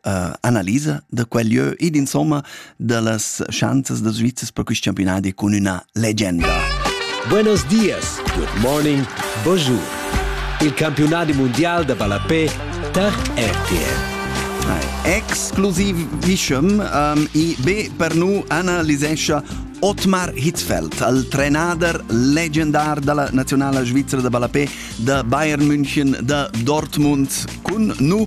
uh, analisa da quel lieu ed insomma da las schanzas da Svizzers per quest campionat cun una legenda. Buenos dias, good morning, bonjour. Il campionat mondial da ballapé tar RTL. Exclusivischem um, i be per nu analisescha Otmar Hitzfeld, al trenader legendar della nazionale svizzera da ballapé da Bayern München da Dortmund, cun nu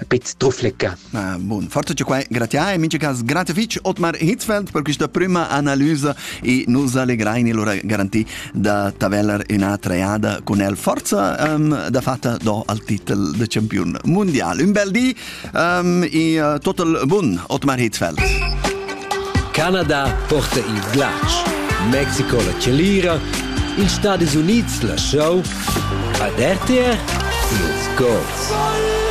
a pezz trufflecca. Ah, bun, forza ci quai, gratia e mince cas grazie fitch Otmar Hitzfeld per questa prima analysa e nos allegrai ne lora garanti da taveller una treada con el forza um, da fatta do al titel de champion mondial. Un bel di um, e uh, total bun Otmar Hitzfeld. Canada porta il glatsch. Mexico la celira, ils Stati Uniti la show, ad RTR, los goals.